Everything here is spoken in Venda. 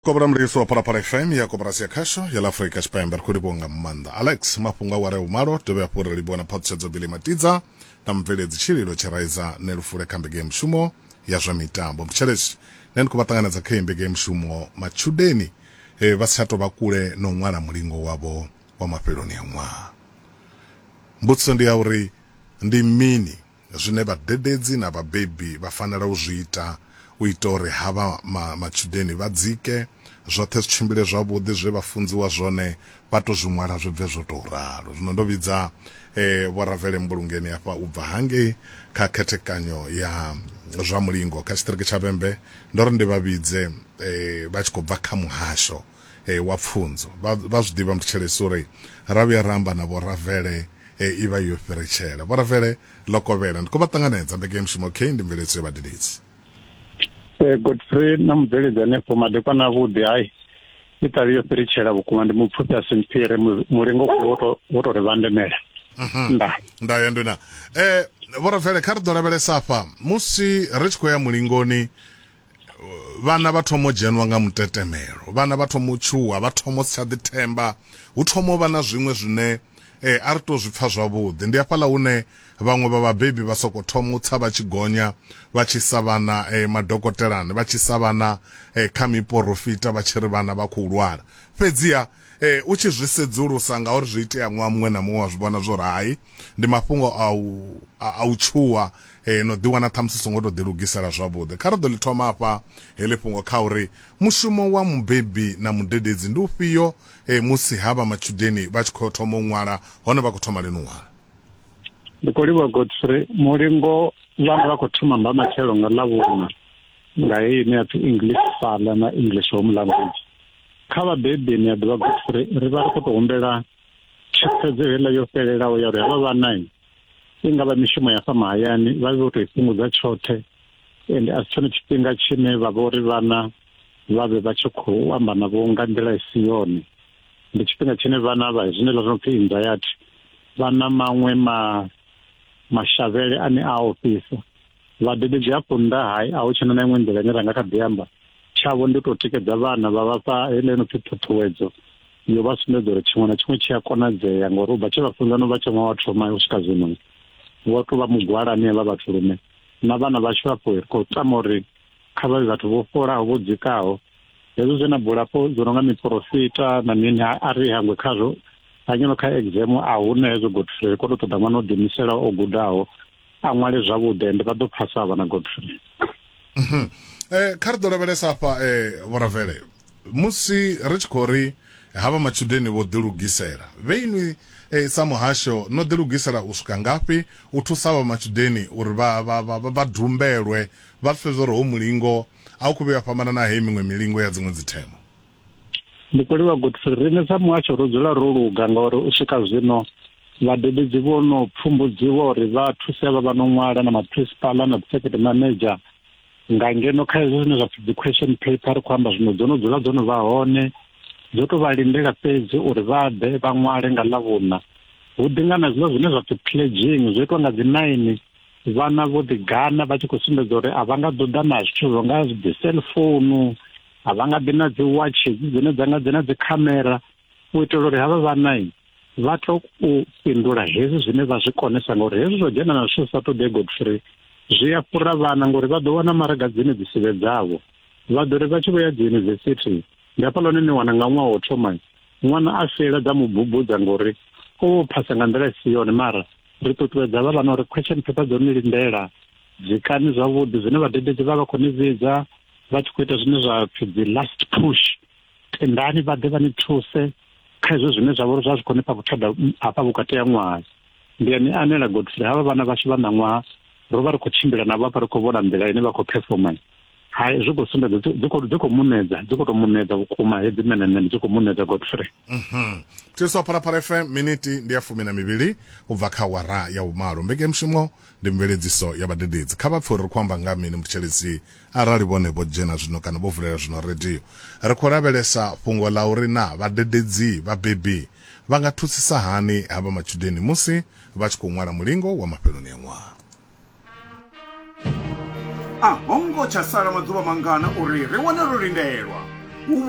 kobra mreitsi wa phalaphala fm ya koporasi ya khasho ya laafurika tshipembe ri khou livhuwa nga maanḓa alex mafhungo aware a vhumalo dovhe hafhu ri livhuwa na phaṱhutshedzo bili matidza na mubveledzi tshililo tshiraiza ne lufule kha mbege ya mushumo ya zwa mitambo mtshelesi ne ndi khou vha ṱanganedza kha iyi mbege ya mushumo matshudeni eh, vha si tsha tou vha kule na u ṅwala mulingo wavho wa mafheloni a ṅwaha mbudziso ndi ya uri ndi mini zwine vhadededzi na vhabebi vha fanela u zwi ita u ita uri havha matshudeni vha dzike, zwoṱhe zwi tshimbile zwavhuḓi, zwe vha funziwa zwone vha tou zwi ṅwala zwi bve zwo tou ralo. Zwino ndo vhidza Vho Ravele Mbulungeni afha u bva hangei kha khethekanyo ya zwa mulingo kha tshiṱiriki tsha Vhembe, ndo ri ndi vha vhidze vha tshi khou bva kha muhasho. wa pfunzo vha vha zwi ḓivha muthetshelesi uri ra vhuya ra amba na vho Ravele i vha yo fhiritshela. Vho Ravele ḽo kovhela ndi khou vha ṱanganedza mbekanyamushumo OK ndi mveledziso ya vhadededzi. Godfrey na mubveledzi hanefho madekwana avhuḓi hai i ṱavhi yo fhiritshela vhukuma ndi mupfufhi a si mphire mulingo wo tou ri vhandemela. Nda. Nda ya ndwina. Eh vho Ravele kha ri ḓo lavhelesa afha musi ri tshi khou ya mulingoni vhana vha thoma u dzhenwa nga mutetemelo vhana vha thoma u tshuwa vha thoma u si tsha ḓithemba hu thoma u vha na zwiṅwe zwine eh, a ri to zwi pfa zwavhuḓi ndi hafhaḽa hune vhaṅwe vha vhabebi vha soko thoma u tsa vha tshi gonya vha tshi sa vhana eh, madokotelani vha tshi sa vhana eh, kha miporofita vha tshi ri vhana vha khou lwala fhedziha Ee, u tshi zwi sedzulusa, ngauri zwi itea ṅwaha muṅwe na muṅwe, wa zwi vhona zwa uri hai, ndi mafhungo a u a u tshuwa na u ḓiwana ṱhamusi u songo tou ḓilugisela zwavhuḓi. Kha ri ḓo ḽi thoma hafha heḽi fhungo kha uri mushumo wa mubebi na mudededzi ndi ufhio musi havha matshudeni vha tshi khou thoma u ṅwala hone vha khou thoma lini u ṅwala. Ndi khou livhuwa Godfrey Mulingo. Vhana vha khou thoma mba matshelo nga Ḽavhuṋa nga heyi ine ya pfi English Fhala na English Home Language. kha vhabebi ni a ḓivha guthu uri ri vha ri khou tou humbela thikhedzo heiḽa yo fhelelaho ya uri havha vhana i nga vha mishumo ya fha mahayani vha vhe vho tou i fhungudza tshoṱhe ende a si tshone tshifhinga tshine vha vha uri vhana vha vhe vha tshi khou amba navho nga nḓila i si yone ndi tshifhinga tshine vhana vha zwine ḽa zwo pfhi anxiety vha na maṅwe ma mashavhele ane a ofhisa Vhabebi zwi hafho nnḓa hai a hu tshena na iṅwe nḓila ine ra nga kha ḓi amba tshavho ndi tou tikedza vhana vha vha fha heḽa ino pfhi ṱhuṱhuwedzo yo vha sumbedza uri tshiṅwe na tshiṅwe tshi a konadzea ngori u bva tshe vha funza no vha tsha ṅwaha wa thoma u swika zwino vho tou vha mugwalani havha vhathu lune na vhana vhashu hafho ri khou tama uri kha vha vhe vhathu vho fholaho vho dzikaho hezwo zwe na bulafho zwo no nga miporofita na mini a ri hangwe khazwo hanyeno kha exam a huna hezwo gotfrey ri khou tou ṱoḓa ṅwana o ḓiimisela o gudaho a ṅwale zwavhuḓi ende vha ḓo phasa vhana godfrey mhm. eh, kha ri ḓo lavhelesa afha um eh, vhoravele musi ri tshi khou ri havha matshudeni vho ḓilugisela vhe inwi eh, sa muhasho no ḓilugisela u swika ngafhi u thusa vha matshudeni uri vha, vha, vha, vha dumbelwe vha pfe zwo ri ho mulingo a u khou vhuya fhambana na heyi miṅwe milingo ya dziṅwe dzithemo Mukweliwa Godfrey, riṋe sa muhasho ro dzula ro luga ngauri u swika zwino vhadededzi vho no pfumbudziwa uri vha thuse vha vha no ṅwala na maphrisipala na dzisekete manager nga ngeno kha hezwo zwine zwa pfi dzi question paper ri khou amba zwino dzo no dzula dzo no vha hone dzo to vha lindela fhedzi uri vha ḓe vha ṅwale nga ḽa vhuna hu ḓi nga na zwiḽa zwine zwa pfi pledging zwo itwa nga dzi nine vhana vho ḓi gana vha tshi khou sumbedza uri a vha nga ḓo ḓa na zwithu zwo nga dzi cell phone a vha nga ḓi na dzi watch dzine dza nga dzi na dzi khamera u itela uri havha vhana vha to u fhindula hezwi zwine vha zwi konesa ngori hezwi zwo dzhena na zwithu sa ṱoḓe godfrey zwi a fhura vhana ngori vha ḓo wana maraga dzine dzi sivhe dzavho vha ḓo ri vha tshi vho ya dzi yunivesithi ndi hafha lone ni wana nga ṅwaha wo thoma ṅwana a fela dza mu bubudza ngori o phasa nga nḓila i si yone mara ri ṱuṱuwedza vha vhana uri question paper dzo ni lindela zwikani zwavhuḓi zwine vhadededzi vha vha khou ni vhidza vha tshi khou ita zwine zwa pfi dzi last push tendani vha ḓe vha ni thuse kha izwo zwine zwa vha uri zwa zwi khou ni fha vhuthada hafha vhukati ha ṅwaha ndi a ni anela godfrey havha vhana vhashu vha ṋaṅwaha ro vha ri khou tshimbila navho hafha ri khou vhona nḓila ine vha khou performa hai zwi khou sumbedza dzi khou dzi khou munedza dzi khou tou munedza vhukuma hedzi menemene dzi khou munedza godfrey mhm. thiriso phalaphala fm miniti ndi ya fumi na mivhili u bva kha wara ya vhumalo mbekemushumo ndi mveledziso ya vhadededzi kha vha pfe uri ri khou amba nga mini muthetshelesi arali vhone vho dzhena zwino kana vho vulela zwino radio ri khou lavhelesa fhungo ḽa uri na vhadededzi vhabebi vha nga thusisa hani havha matshudeni musi vha tshi khou ṅwala mulingo wa mafheloni a ṅwaha a ho ngo tsha sala maḓuvha mangana uri ri wane ro lindelwa u vhona